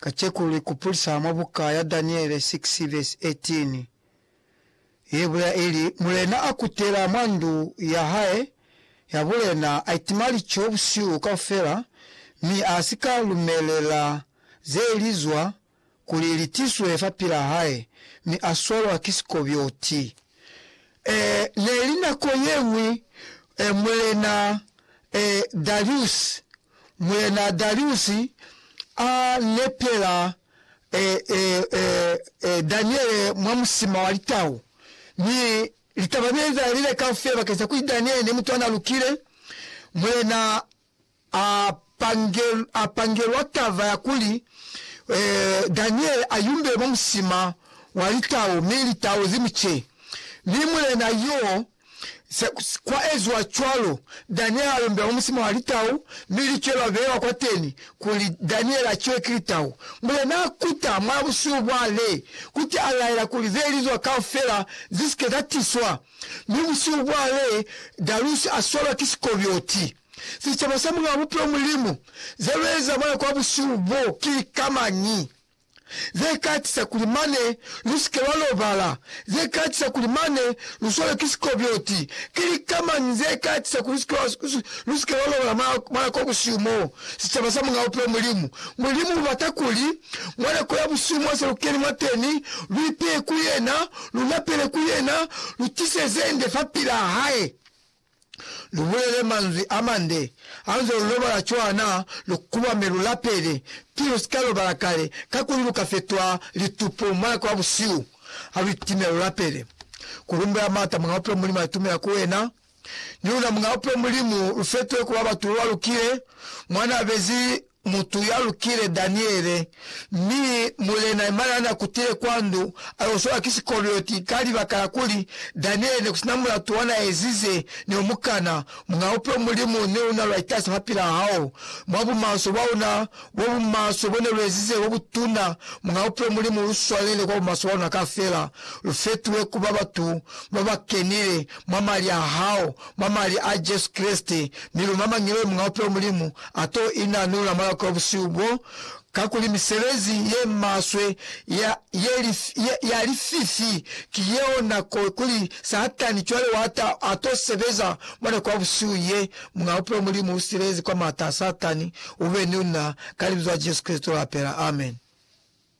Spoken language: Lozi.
Kaceko lu ikupulisa mwa buka ya Daniele 6 vesi 18, ye bulela ili, Mulena a kutela mwa ndu ya hae ya bulena, a itima lico busihu kaufela, mi a si ka lumelela ze li zwa kuli li tiswe fapilaa hae, mi a swalwa ki sikobyoti. Ee, ne li nako ye ñwi mulena Dariuse Mulena Dariusi a nepela Daniele mwa musima wa litau, mi litaba ne liezahezile kaufela bakeng sa kuli Daniele ne mutu ana lukile. Mulena a pangelwa taba ya kuli Daniele a yumbele mwa musima wa litau, mi litau zi mu ce. Mi mulena yo Se kwa eziwa cwalo, Daniele a yombela musima wa litau, mi licwe lwa bewa kwateni kuli Daniele a ciwe ki litau. Mulena a kuta mwa busihu bwa le kuti a laela kuli ze lizwa kaufela zi si ke za tiswa, mi busihu bwa le Darusi a swalwa ki sikobioti. Sicaba sa Mulena wa Bupilo Mulimu, ze lu eza mona kwa busihu bo ki lika mañi? ze ka tisa kuli mane lu si ke lwa lobala, ze ka tisa kuli mane lu swalwe ki sikobyoti. Ki lika mañi ze ka tisa kuli lu si ke lwa lobala mwa nako ya busihu mo sicaba sa Muñ'a Bupilo Mulimu? Mulimu ubata kuli mwa nako ya busihu mo se lu keni mwateni, lu ipeye ku yena, lu lapele ku yena, lu tise ze nde fapilaa hae. lu bulele manzwi a mande hanze lu lobala cwa na lu kuba mi lu lapele, ki lu si ka lobala kale, kakuli lu ka fetwa litupu mwa nako ya busihu ha lu itime lu lapele. Ku lumbela maata Muñ'a Bupilo Mulimu a itumela ku wena. Ni luna Muñ'a Bupilo Mulimu lu fetohe ku ba batu ba ba lukile mwa n'a bezi mutu ya lukile Daniele, mi mulena imana na kutile kwa ndu a yo solwa ki sikolioti ka libaka la kuli Daniele ne ku sina mulatu wa na ezize ne o mukana. Muna upe Mulimu ne una lwa itasi mapila a hao, mwa bumaswe bwa una, bo bumaswe bo ne lu ezize bo butuna. Muna upe Mulimu lu swalele kwa bumaswe bwa una kafela, lu fetuhe kuba batu ba ba kenile mwa mali a hao, mwa mali a Jesu Kreste, mi lu mamangile Muñ'a Bupilo Mulimu a t'o inanula mwalako wa busihu bo, kakuli misebezi ye maswe ya, ye li, ye, ya lififi ki yeo nako kuli Satani cwale wa ta, a t'o sebeza mwa nako ya busihu ye. Muñ'a Bupilo Mulimu u silelezi kwa m'ata a Satani, u be ni luna ka Libizo la Jesu Kreste l'a pela. Amen.